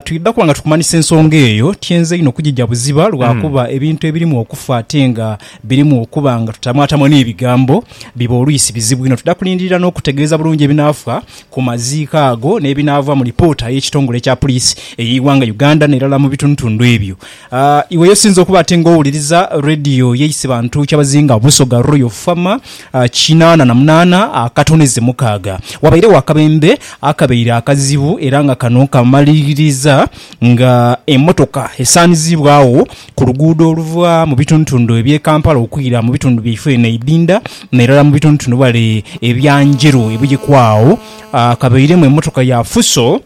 Twidha kuba nga tukumanhisa ensonga eyo. Tyenze inho kugija buziba lwakuba ebintu ebirimu okufa ate nga birimu okuba nga tutamwatamwa n'ebigambo, biba oluisi bizibu inho. Twidha kulindirira n'okutegeeza bulungi ebinaafa ku maziiko ago n'ebinaava mu lipoota y'ekitongole kya puliisi ey'eighanga Uganda n'erala mu bitundutundu ebyo. A Iwe y'osinze okuba ate ng'owuliriza leediyo y'eisi bantu kyabazinga Busoga Royal Fama kinaana na munaana akatonize mukaaga. Wabairegho akabembe akabaire akazibu era nga kano kamaliriza nga emmotoka esaanizibwagho ku luguudo oluva mu bitundutundu eby'e Kampala okwira mu bitundu byaife eno eidinda n'erala mu bitundutundu ghale ebya Njeru ebuyeku agho kabairemu emmotoka ya Fuso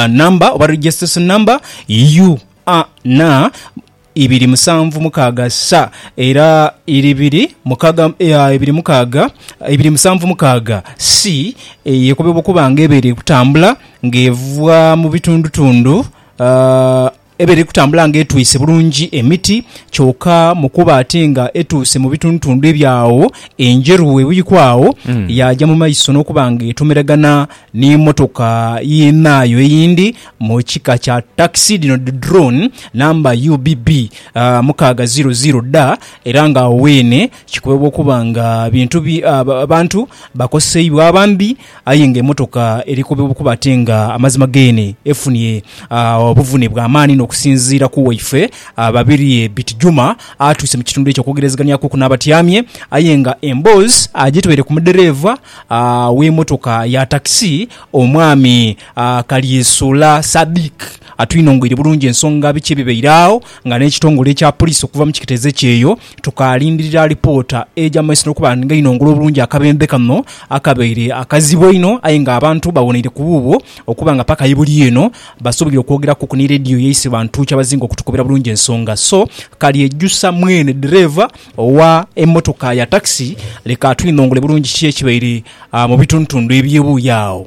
number oba registration number UANA ibiri musanvu mukaaga sa era ibiri mukaga ibiri mukaaga ibiri musanvu mukaaga C yekobebwa okuba nga ebaire eri kutambula nga evaa mubitundutundu aa. Eba eri kutambula nga etwise bulungi emiti, kyoka mu kuba ate nga etuuse mu bitundutundu ebya agho Enjeru we buikwa agho, yaaja mu maiso n'okuba nga etomeragana ni mmotoka yinaayo eyindi mu kika kya takisi, dhino dhi drone, namba UBB mukaaga ziiro ziiro dha era nga agho weene kikubebwa okuba nga bintu bantu bakoseibwa abambi Aye nga emotoka eri kuba ate nga amazima geene efunye obuvune bwa maani n'okusinziira ku waife Babirye Biti Juma atuuse mu kitundu ekyo okwogerezeghanyakuku n'abatyamye aye nga emboozi agitwaire ku mudereeva w'emotoka ya takisi omwami Kalyesoola Sadiq atwinongoire bulungi ensonga biki ebibaire agho nga n'ekitongole ekya Poliisi okuva mu kiketezo ekyeyo Tukaalindirira lipoota eja mu maiso n'okuba nga inongole obulungi akabembe kano akabaire akazibu einho aye nga abantu bawoneire ku buubwo okuba nga paka ibuli eno basoboire okwogeraku ku ni leediyo yaiswe bantu kyabazinga okutukobera bulungi ensonga so Kalyejusa mwene ddereeva owa emmotoka ya takisi leka atwinongole bulungi ki ekibaire mu bitundutundu eby'ebuuyi agho.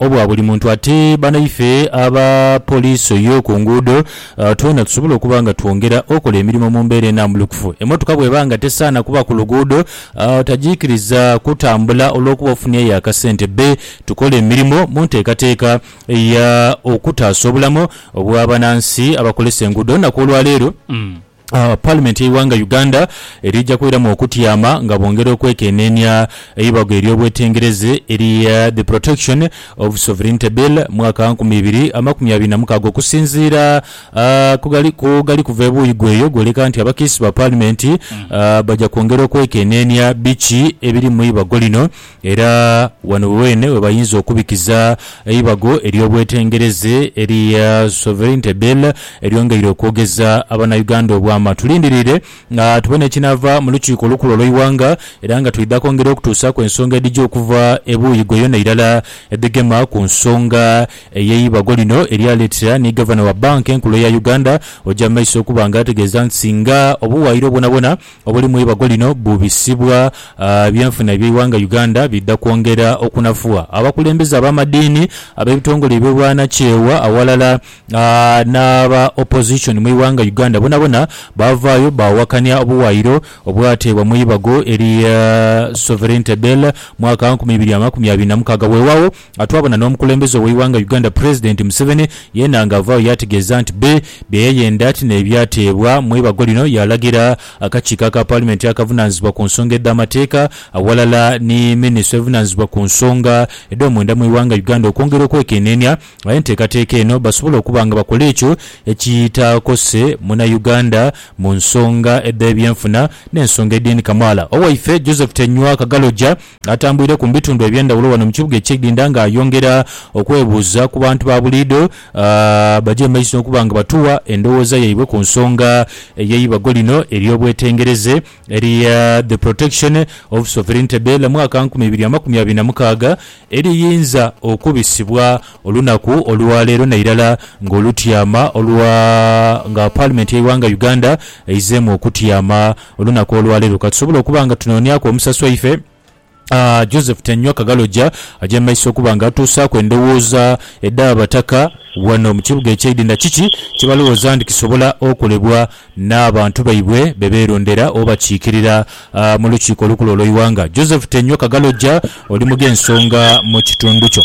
obwa buli muntu ate banaife aba poliisi ey'oku nguudo twena tusobole okuba nga twongera okola emirimo mu mbeera enambulukufu. Emmotoka bw'eba nga tesaana kuba ku luguudo tagiikiriza kutambula olw'okuba ofunyeeyo akasente bbe tukola emirimo mu nteekateeka ya okutaasa obulamu obw'abanansi abakolesa enguudo olunaku olwaleero. Paalimenti y'eighanga Uganda eriija kwiramu okutyama nga bongera okwekeneenia eibago ery'obwetengereze erya The Protection of Sovereignty Bill mwaka nkumi ibiri amakumi abiri na mukaaga okusinziira ku gali kuva ebuuyi gweyo gwoleka nti abakiisi ba paalimenti baja kwongera okwekeneenia biki ebiri mu ibago lino Era ghano weene we bayinza okubikiza eibago ery'obwetengereze erya Sovereignty Bill eryongeire okwogeza Abanauganda obwama. Tulindiriire tubone ekinaava mu Lukiiko olukulu olw'eighanga era nga twidha kwongera okutuusaku ensonga edhija okuva ebuuyi ghoyona irala edhigema ku nsonga ey'eibago lino eryaleetera ni Gavana wa Bbanka Enkulu eya Uganda oja maiso okuba nga ategeeza nti singa obuwaayiro bwonabwona Obuli mu ibago lino bubisibwa, ebyenfuna eby'eighanga Uganda bidha kwongera okunafuwa abakulembeze ab'amadiini, ab'ebitongole eby'obwanakyewa aghalala n'aba Opposition mu ighanga Uganda bonabona baavaayo baawakania obuwaayiro obwateebwa mu ibago erya Sovereignty Bill mwaka nkumi ibiri amakumi abiri na mukaaga weewaawo Nga twabona n'omukulembeze ow'eighanga Uganda Pulezidenti Museveni yeena nga avaayo yaategeeza nti bbi bye yayenda ti n'ebyateebwa mu ibago lino yaalagira akakiiko aka Paalimenti akavunaanyizibwa ku nsonga edh'amateeka aghalala ni Minisitule evunaanyizibwa ku nsonga edh'omunda mu ighanga Uganda okwongera okwekeneenia enteekateeka eno basobole okuba nga bakola ekyo ekitaakose Munauganda mu nsonga edh'ebyenfuna n'ensonga edhindi kamaala. Owaife Joseph Tenywa Kagaloja. Atambwireku mu bitundu eby'endhaghulo ghano mu kibuga eky'Idinda nga ayongera okwebuuza ku bantu ba buliidho abaja emaiso okuba nga batuwa endhowooza yaibwe ku nsonga ey'eibago lino ery'obwetengereze erya The Protection of Sovereignty Bill mwaka nkumi ibiri amakumi abiri na mukaaga eriyinza okubisibwa Olunaku olwaleero nairala nga olutyama olwa nga Parliament yeighanga Uganda eizeemu okutyama olunaku olwaleero katusobole okuba nga tunooniaku omusasi waife Joseph Tanywa Kagalogya aja mumaiso okuba nga atuusaaku endowooza edhabataka wano mukibuga ekyeidinda kiki kyebalowooza nti kisobola okolebwa n'abantu baibwe beberondera obakiikirira mulukiiko olukulu olweighanga. Joseph Tanywa Kagalogya oli mughensonga mukitundu kyo.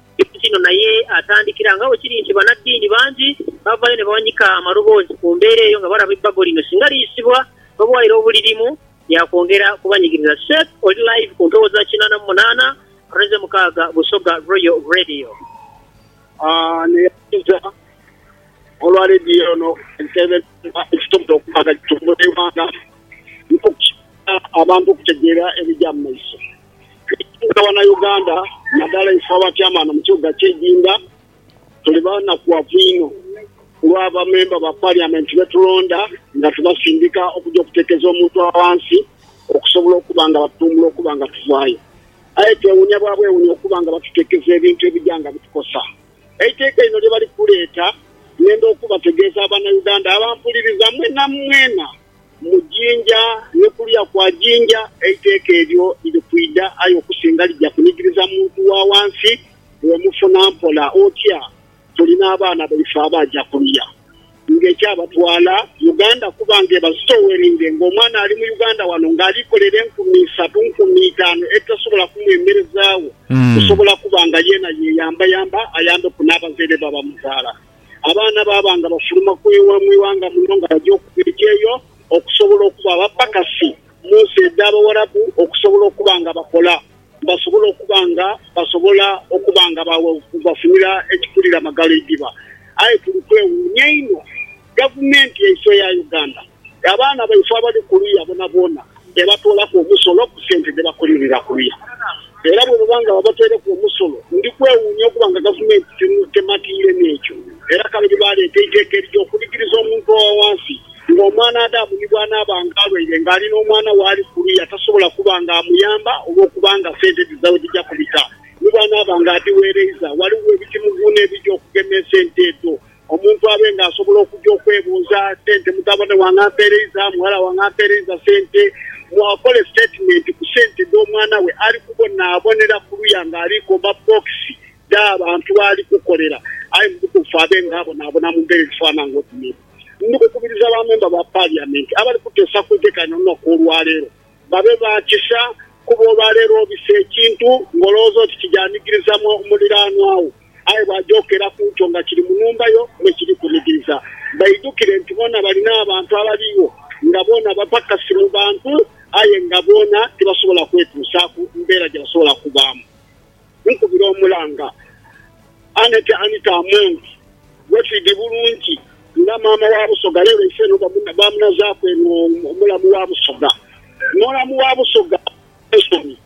Ekintu kino naye atandikira nga bwe kiri nti banaddiini bangi bavayo ne bawanika amaloboozi ku mbeera eyo nga balaba ebbago lino singa liyisibwa n'obuwaayiro obulirimu lya kwongera kubanyigiriza. Seth oli live ku mpewo za kinaana mu munaana rw'eze mukaaga Busoga Royal Radio. Ono yasinza olwa leediyo eno eteeberezebwa ekisobodde okuba nga gitumbula eighanga n'okukyaala abantu okutegeera ebigya mu maiso. Ekisinga Banauganda nadala ife abatyamaana mu kibuga kye Jinda tuli banakuwavu inho kulwa ba memba ba parliament betulonda nga tubasindika okuja okutekeza omuntu awansi okusobola okuba nga batutumbula okuba nga tuvayo aye twewunya bwa bwewunya okuba nga batutekeza ebintu ebija nga bitukosa Eiteeka lino lyebali kuleeta ngenda okubategeeza Banauganda abampuliriza mwena mwena Mu jinja ni kuliya kwa jinja, eiteeka eryo liri kwidha, aye okusinga lija kunigiriza muntu wa wansi. Bwemufuna mpola otya, tuli n'abaana baife abaaja kuluya nga ekyabatwala Uganda kuba nga ebazitoweringe nga omwana ali mu Uganda wano nga ali kolera enkumi isatu, nkumi itaanu edhitasobola kumwemerezaagho kusobola kuba nga yeena yeyambayamba ayambeku n'abazaire be abamuzaala. abaana baaba nga bafuluma ku ighanga muno nga baja okuba ekyeyo okusobola okuba abapakasi mu nsi edh'Abawarabu okusobola okuba nga bakola basobole okuba nga basobola okuba nga bafunira ekikulira magala idhiba. Aye tuli kwewuunya inho Gavumenti yaiswe eya Uganda, abaana baifo abali kuliya boonaboona, ebatoolaku omusolo ku sente dhe bakolerera kuliya era bwe baba nga babataireku omusolo, ndi kwewuunya okuba nga Gavumenti tematiire n'ekyo era kale ni baaleeta eiteeka erija okunigiriza omuntu owa wansi nga omwana Adamu ni bw'anaaba nga alwaire nga ali n'omwana w'ali kuliya tasobola kuba nga amuyamba olw'okuba nga sente dhidha we dhija kubita ni bw'anaaba nga adhiweereiza. Ghaligho ebitimuguuna ebija okugema esente edho. Omuntu abe nga asobola okuja okwebuuza sente, mutabane wange ampeereiza, mughala wange ampeereiza sente, mu akole sitetimenti ku sente dh'omwana we ali kubonaabonera kuluya nga ali komba bbookisi dh'abantu b'ali kukolera aye mu butuufu abe nga abonaabona mu mbeera edhifaanana ng'oti n'edho. Ndi kukubiriza ba memba ba Paliyamenti abali kuteesa ku nteeka eno olunaku olwaleero Babe ba kisa, kuba olwaleero obisa ekintu ng'olowooza oti kija nigiriza muliraanwa wo, aye bw'aja okera ku kyo nga kiri mu nhumba yo me kiri kunigiriza. Baidhukire nti boona bali n'abantu abaligho nga boona bapakasi mu bantu, aye nga boona tibasobola kwetuusaaku mbeera gye basobola kubaamu. nkubira omulanga. Annet Anita Among, Wefidi bulungi nga maama wa Busoga lero ife eno bamunazaku eno omulamu wa Busoga. Omulamu wa Busoga Nelson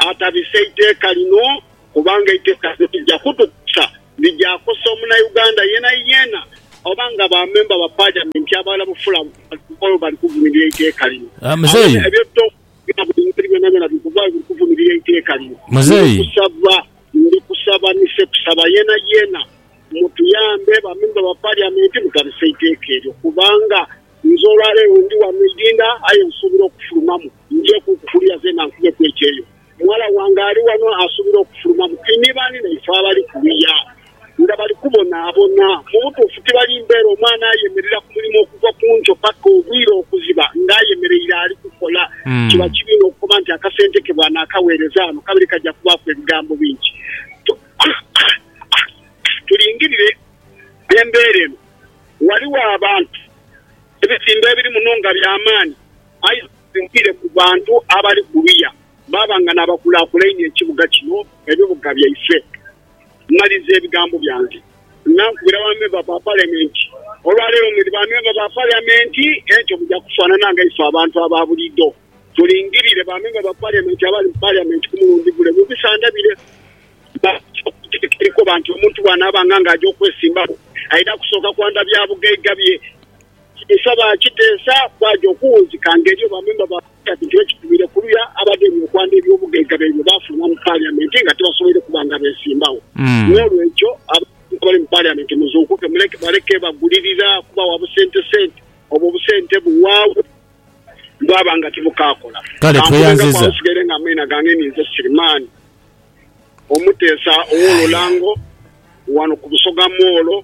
atabise eiteeka lino kubanga eiteeka lino lija kutukosa, lijakosa omunauganda yenayena oba nga ba member ba parliament abalala bufula bali kuvumirira eiteeka lino. Aye ebyo Ebitabudabuda byonabyoona biri kuvaayo biri kuvumirira eiteeka lino. Muzeeyi. Ndikusaba, ndikusaba ni Ssekusaba yeenayeena mutuyambe ba memba ba Parliament mughabise eiteeka eryo kubanga nze olwaleero ndi wano Idinda aye nsuubira okufulumamu njeekuuku kuliya zeena nkubeku ekyeyo. Mughala wange ali wano asuubira okufulumamu. Tinibaani naife abali kuliya. nga bali kubonaabona. Mu butuufu, tibali mbeere omwana ayemerera ku mulimo okuva ku nkyo paka obwire okuziba nga ayemereire ali kukola. Kiba kibi inho okukoba nti akasente ke bwanaakagheereza ghano kabire kaja kubaaku ebigambo bingi. Tulingirire embeera eno. Ghaligho abantu ebizimba ebiri muno nga bya maani, aye nga bisinziire ku bantu abali kuluya baaba nga n'abakulaakulainia ekibuga kino, ebibuga byaife. Maliza ebigambo byange. Nankubira bamemba ba Palementi, Olwaleero mwidhi bamemba ba Palementi, ekyo muja kufanana nga ife abantu aba buliidho. Mulingirire bamemba ba Palementi abali mu Palementi ku mulundi gule. Mubisandabire. Bakusoka okutegeka enkoba nti omuntu bwanaabanga nga aja okwesimbaku, aidha kusooka kwandha bya bugaiga bye. Kino nsaba kiteesa bwaja okuwunzika ng'eriyo bamemba ba. Kati kino kitwire kuluya abagenyi okwanda ebyobugaiga byaibwe baafunwa mu Parliament nga tibasoboire kuba nga beesimbawo. N'olwekyo abantu abali mu Parliament muzuukuke muleke baleke bagulirira kubawa busentesente. Obwo obusente buwaagho bwaba nga tibukaakola. Kankubengako agho nsigaire nga amaina gange ni nze Sirimaani, Omuteesa ow'Olulango wano ku Busoga Moolo.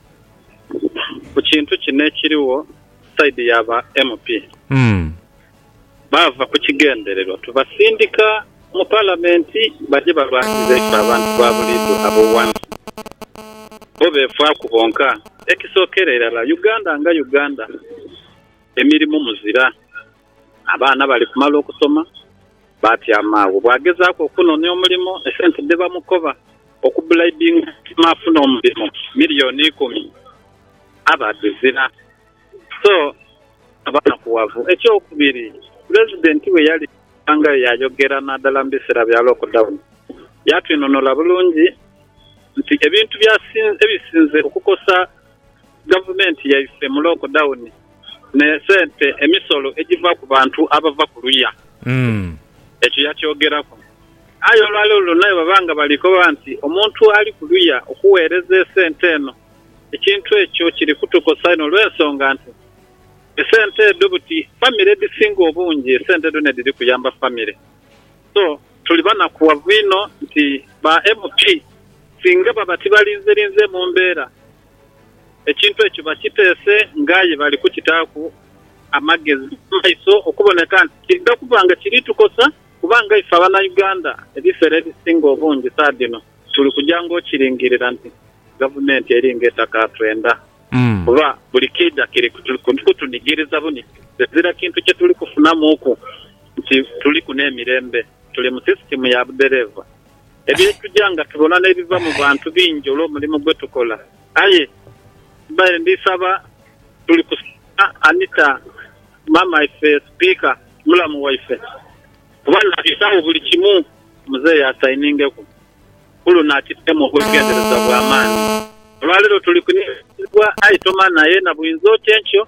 ku kintu kino ekirigho side ya ba MP. Baava ku kigendererwa tubasindika mu palamenti baje balwanirize ife abantu ba buliidho ab'owansi. Bo befaaku bonka. Ekisookera irala Uganda nga Uganda, emirimu muzira. Abaana bali kumala okusoma, baatyama agho. Bw'agezaaku okunoonia omulimo, esente dhe bamukoba okubulaibinga omutima afune omulimo, miliyooni ikumi, aba adhizira. So, aba nakuwavu. Ekyokubiri, Pulezidenti bwe yali yasangayo yaayogera naadala mu biseera bya lockdown, yaatwinunula bulungi nti ebintu ebisinze okukosa. Gavumenti yaife mu lockdown ne sente, emisolo egiva ku bantu abava ku luya. Ekyo yakyogeraku. Aye olwaleero lwona bwebaba nga bali koba nti omuntu ali ku luya okuweereza esente eno, ekintu ekyo kiri kutukosa inho olw'ensonga nti esente edho buti famire edhisinga obungi esente edho nedhiri kuyamba famire. So tuli banakughavu inho nti ba MP singa baba tibalinzerinze mu mbeera, ekintu ekyo bakiteese nga aye bali kukitaaku amagezi mu maiso okuboneka nti kiidha kuba nga kiri tukosa kuba nga ife Abanauganda ebisera ebisinga obungi saa dhino tuli kuja nga okiringirira nti Gavumenti eri nga etakatwenda kuba buli kiidha kiri kutunigiriza bunigiriza ezira kintu kye tuli kufunamuuku. nti tuliku n'emirembe, tuli mu sisitimu ya budhereeva. Ebyetuja nga tubona n'ebiva mu bantu bingi olw'omulimu gwetukola. Aye mbaire ndi saba tuli kusiima Anita maama ife sipiika mulamu waife kuba nabisaagho buli kimu muzeeyi asainingeku kuluno akiteemu obwegendereza bw'amaani. Olwaleero tuli kunighanizibwa aye tomanha yena buyinza oti enkyo.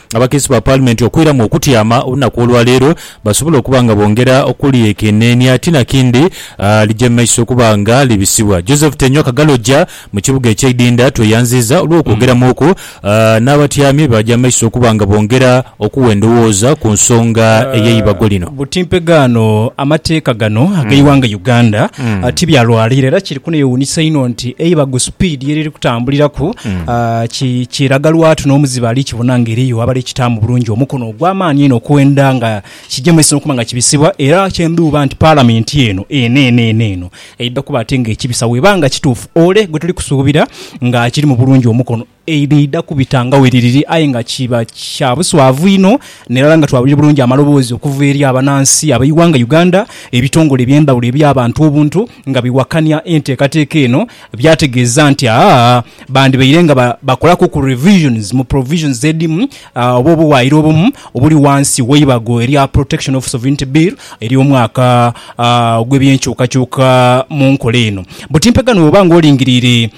Abakiise ba Paalimenti okwiramu okutyama olunaku olwaleero basobole okuba nga bongera okulyekeneenia ti nakindi lije mu maiso okuba nga libisibwa. Joseph Tenywa Kagaloja mu kibuga ekye Idinda tweyanziiza olw'okwogeramuuku n'abatyami baaja mu maiso okuba nga bongera okugha endowooza ku nsonga ey'eibago lino. Buti mpegaano amateeka gano ag'eighanga Uganda tibyalwalira era kiri. Kuno yewuunhisa inho nti eibago supiidi ye liri kutambuliraku kiraga lwatu n'omuzibe ali kibona nga eriyo abali kitaamu bulungi omukono ogw'amaani einho okwenda nga kigya mu maiso n'okuba nga kibisibwa era kye ndhuuba nti Palamenti eno eneeneene eno eidha kuba ate nga ekibisa bweba nga kituufu ole gwe tuli kusuubira nga akirimu bulungi omukono. Eidha kubita nga bwe liriri aye nga kiba kya buswavu inho n'erala nga twawulira bulungi amaloboozi okuva eri abanansi ab'eighanga Uganda, ebitongole eby'endhawulo eby'abantu obuntu nga biwakania enteekateeka eno byategeeza nti aah bandibaire nga bakolaku ku revisions mu provisions edhimu oba obuwaayiro obumu obuli wansi w'eibago erya Protection of Sovereignty Bill ery'omwaka ogw'ebyenkyukakyuka mu nkola eno. Butimpegano bw'oba nga olingiriire.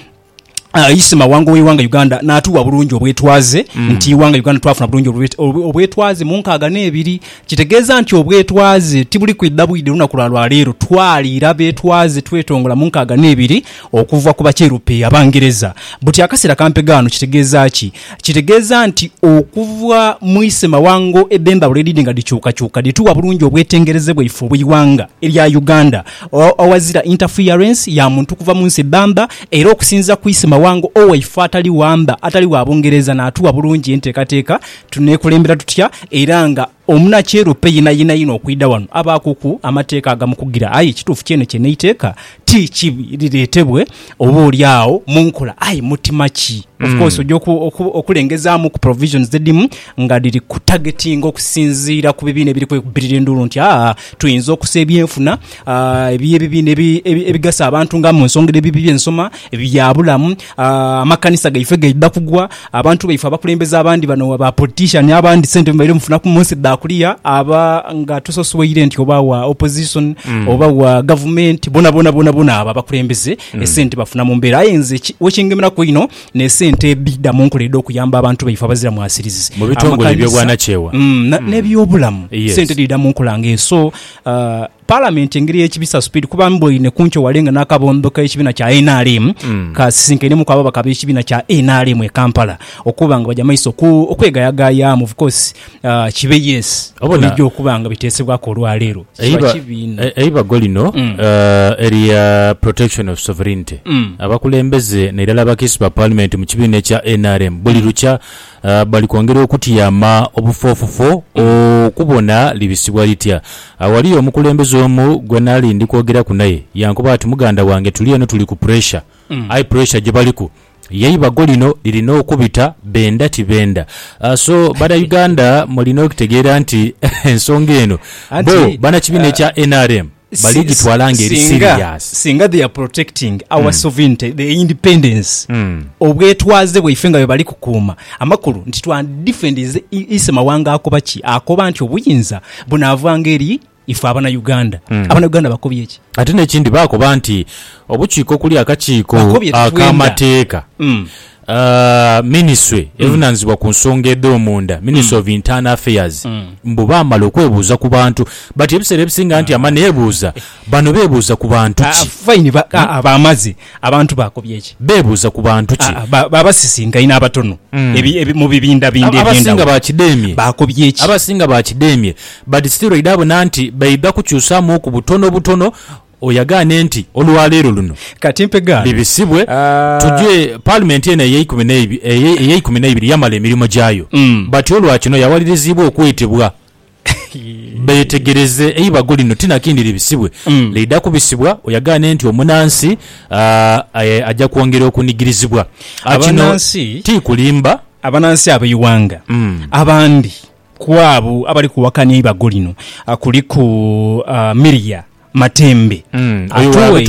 Isi Mawanga ow'eighanga Uganda naatuwa bulungi obwetwaze nti eighanga Uganda twafuna bulungi obwetwaze mu nkaaga n'ebiri. Kitegeeza nti obwetwaze tibuli kwidha bwidha olunaku lwa lwaleero. Twaliira betwaze twetongola mu nkaaga n'ebiri okuva ku Bakyerupe, Abangereza. Buti akaseera kampegho ghano kitegeeza ki? Kitegeeza nti okuva mu Isi Mawanga edh'endhawulo edhidhi nga dhikyukakyuka dhituwa bulungi obwetengereze bwaife obw'eighanga erya Uganda. awazira interference ya muntu kuva mu nsi bbamba era okusinziira ku Isi Mawanga owaife atali wamba atali wa Bungereza natuwa bulungi enteekateeka tunekulembera tutya era nga omunakyerope yena yena yena okwidha wano abaakuku amateeka agamukugira aye ekituufu kyene kyene eiteeka ti kibi liretebwe oba oli agho munkola aye mutima ki mm. of course oja okulengezamu ku provisions dhedimu nga dhiri ku targeting okusinziira ku bibiina ebiri kwekubirira enduulu nti aa tuyinza okusa ebyenfuna ebyebibiina ebigasa abantu nga mu nsonga ebibi byensoma ebyabulamu amakanisa gaife gaidha kugwa Abantu baife abakulembeze abandi bano wa ba politician abandi sente mubaire mufunaku munsi dha kulia aba nga tusosweire nti oba wa opposition oba wa gavumenti bonabona bonabona abo abakulembeze esente bafuna mumbera aye nze ki wekingemeraku einho nesente edhida munkola edho kuyamba abantu baife abazira mwasirizi Mu bitongole amakanisa ebyobwanakyewa. mm, na- nebyobulamu Yes. sente dhida munkola nga eso uh, Palamenti engeri ey'ekibisa supiidi kuba mbwaine kunkyo wale nga n'akabondo k'ekibiina kya nrm kasisinkainemu ababaka ab'ekibiina kya nrm e Kampala okuba nga baja maiso okwegayagayaamu of course kibe yes oba noija okuba nga biteesebwaku olwaleero kiba kibiina. Eibago lino erya Protection of Sovereignty abakulembeze nairala abakisi ba Palimenti mu kibiina ekya nrm buli lukya Bali kwongera okutyama obufoofofo okubona libisibwa litya. Agho ghaliyo omukulembeze omu gwe nali ndi kwogeraku naye, yankoba ati, Muganda wange, tuli eno tuli ku puresha. Aye puresha gye baliku y'eibago lino lirina okubita, benda tibenda. So, Banauganda mulina okutegeera nti ensonga eno, bbo banakibiina ekya nrm, baligitwala nga eri serious. Singa they are protecting our sovereignty, the independence, obwetwaze bwaife nga bwebali kukuuma, amakulu nti twandidefendinze ise mawanga akoba ki? Akoba nti obuyinza bunavanga eri ife abana Uganda. Abana Uganda bakobye ki? Ate nekindi bakoba nti obukiiko okulya akakiiko Bakobye tetwenda. ak'amateeka Minisitule evunaanyizibwa ku nsonga edh'omunda, Ministry of Internal Affairs, mbu baamala okwebuuza ku bantu but ebiseera ebisinga anti ama neebuuza bano beebuuza ku bantu ki? Fine ba, aa, baamaze. Abantu baakobye ki? Beebuuza ku bantu ki? Aa, ba, baabasisinkaine abatono ebi, ebi, mu bibindabinda Abasinga eby'endhawulo. baakideemye. Baakobye ki? Abasinga baakideemye but still oidha bona nti baidha kukyusaamuuku butonobutono. Oyo agaane nti olwa leero luno Kati mpe gaano. bibisibwe, tuje. Ah. Paalimenti eno ey'eikumi n'eib, eye, ey'eikumi n'eibiri yamala emirimo gyayo. Mm. Batyo olwa kino yawaliriziibwa okwetebwa beetegereze eibago lino ti na kindi libisibwe. Mm. Liidha kubisibwa oyo agaane nti omunaansi, ah, eh, aja kwongera okunigirizibwa. Ah, kino Abanansi, ti kulimba. abanansi ab'eighanga Mm. abandi ku abo abali kuwakania eibago lino ah, kuliku ah, Miria Matembe atuwe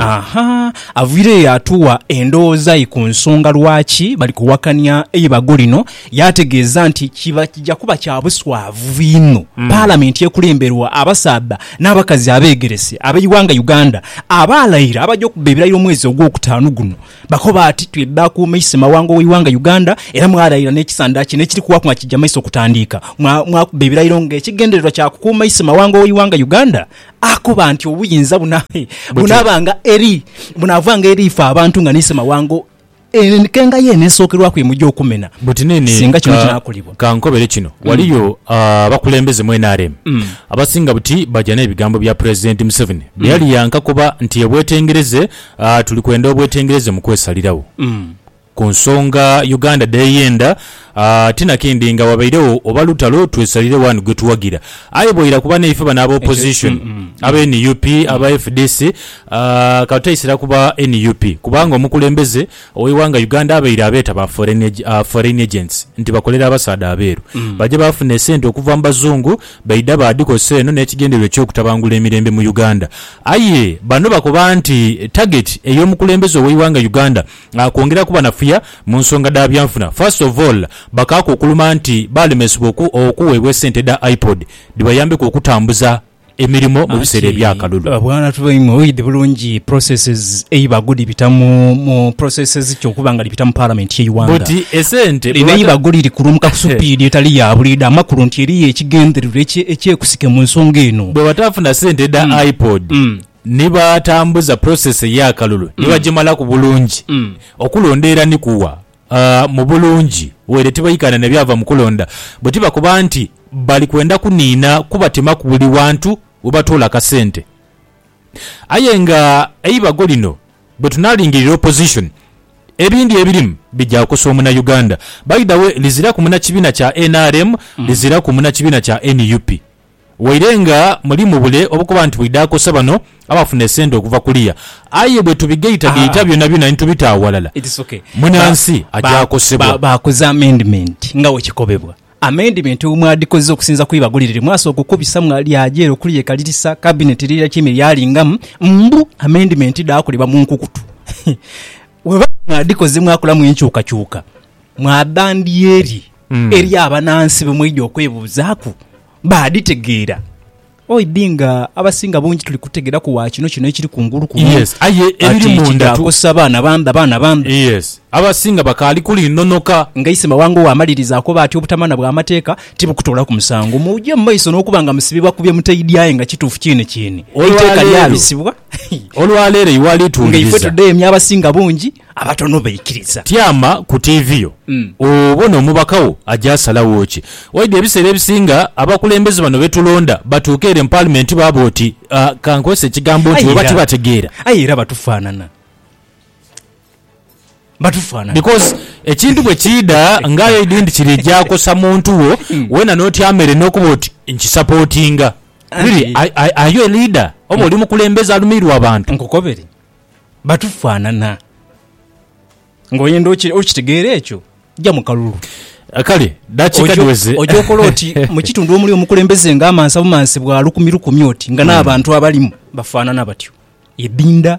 aha avaireyo yaatuwa endowooza ye ku nsonga lwaki bali kuwakania eibago lino yaategeeza nti kiba kija kuba kya buswavu inho Palamenti ekulemberwa abasaadha n'abakazi abeegerese ab'eighanga Uganda abaalaira abaja okubba ebirayiro omwezi ogwokutaanu guno Bakoba ati, Twidha akuuma ise mawanga ow'eighanga Uganda era mwaraira n'ekisanda kino ekiri kuwaku nga kija maiso okutandiika. Mwakubba ebirairo nga ekigendererwa kya kukuuma ise mawanga ow'eighanga Uganda. Akoba nti obuyinza bunaabanga eri, bunaavanga eri ife abantu nga n'ise mawanga enkenga yeene esookerwaku emwija okumena Buti nini singa kino kinaakolebwa. Ka nkobere kino, waliyo abakulembeze mu nrm abasinga buti baja n'ebigambo bya Pulezidenti Museveni bye yali yankakoba nti yebwetengereze A Tuli kwenda obwetengereze mu kwesaliragho ku nsonga Uganda dh'eyenda. A Tinakindi nga wabairegho oba lutalo twesaliregho ani gwe tuwagira. Aye bwaira ku banaife bano aba opposition, aba nup, aba fdc, a ka tutaisira ku ba nup kubanga omukulembeze Ow'eighanga Uganda abaire abeeta ba Foreign Agents nti bakolera abasaadha abeeru baja baafuna esente okuva mu Bazungu baidha baadhikozesa eno n'ekigendererwa eky'okutabangula emirembe mu Uganda. Aye bano bakoba nti tageti ey'omukulembeze ow'eighanga Uganda kwongera kubanafuya mu nsonga dha byanfuna. First of all, bakaaku okuluma nti baalemesebwa okuweebwa esente dha iPod dhibayambeku okutambuza. emirimo mu biseera eby'akalulu. Bwana tuba imwe oid bulungi processes eiba good bita mu mu processes ki okuba nga dhibita mu parliament ye iwanga. But esente Lino bwebata. eiba good likulumuka ku supiidi etali ya buliidho amakulu nti eriyo ekigendererwa ekye ekyekusike mu nsonga eno. Bwebatafuna sente dha IPOD ni batambuza process ey'akalulu ni bagimalaku bulungi, okulonda era ni kuwa A Mu bulungi, waire tibaikaana na byava mu kulonda bwe tibakoba nti bali kwenda kuniina kubatemaku buli wantu we batoola akasente. Aye nga eibago lino bwe tunaalingirira opposition, ebindi ebirimu bigya kukosa omunauganda. By the way, liziraku munakibiina kya nrm, liziraku munakibiina kya nup. Waire nga muli mu bule obukuba nti bwidha akosa bano abafuna esente okuva kuliya, aye bwe tubigaitagaita byonabyona ni tubita aghalala, munansi aja akosebwa. Baakoze amendment nga bwe kikobebwa. Amendment bwe mwadhikoze okusinza ku ibago lire lye mwasooka okubisa mwalyaja ere okuliyekalirisa, Kabineti lirirakiime lyalingamu mbu amendment dhaakolebwa mu nkukutu. Bwebaba mwadhikoze mwakolamu enkyukakyuka mwaba ndyeri eri abanansi be mwaidha okwebuuzaaku, baadhitegeera. Oidhi nga abasinga bungi tuli kutegeraku wa kino kyona ekiri kungulu kuno, Yes, aye ebiri kati munda tu- kidhaakosa baana bambi, abaana bambi. Yes, abasinga bakaali kulinhonoka. Nga Isima wange ow'amaliriza akoba ati, Obutamanya bw'amateeka tibukutoolaku musango. Muje mu maiso n'okuba nga musibibwa ku bye mutaidhi aye nga kituufu kyene kyene. Eiteeka Olwaleero, lyabisibwa. Olwa leero iwe alitunuliriza. Nga ife tudheemya abasinga bungi, abatono baikiriza. Tyama ku tiivi yo obone omubaka wo aja asalagho ki. Waidha ebiseera ebisinga abakulembeze bano be tulonda batuuka ere mu Paalimenti baaba oti, ka nkozese ekigambo nti, oba tibategeera. Aye era batufaanana. Batufaanana. Because ekintu bwe kiidha nga aye idi nti kiri gya kosa muntu wo, weena n'otyama ere n'okuba oti nkisapootinga. Really, Anti- are, are, are you a leader? Oba oli mukulembeze alumiirwa abantu? Nkukobere. Batufaanana. Ng'oyenda oki- okitegeera ekyo, ja mu kalulu. Kale, dakiika Ojo- dhiweze. Oja okola oti mu kitundu omuli omukulembeze nga amansa bumansi bwa lukumi lukumi oti nga n'abantu abalimu bafaanana batyo. Edinda.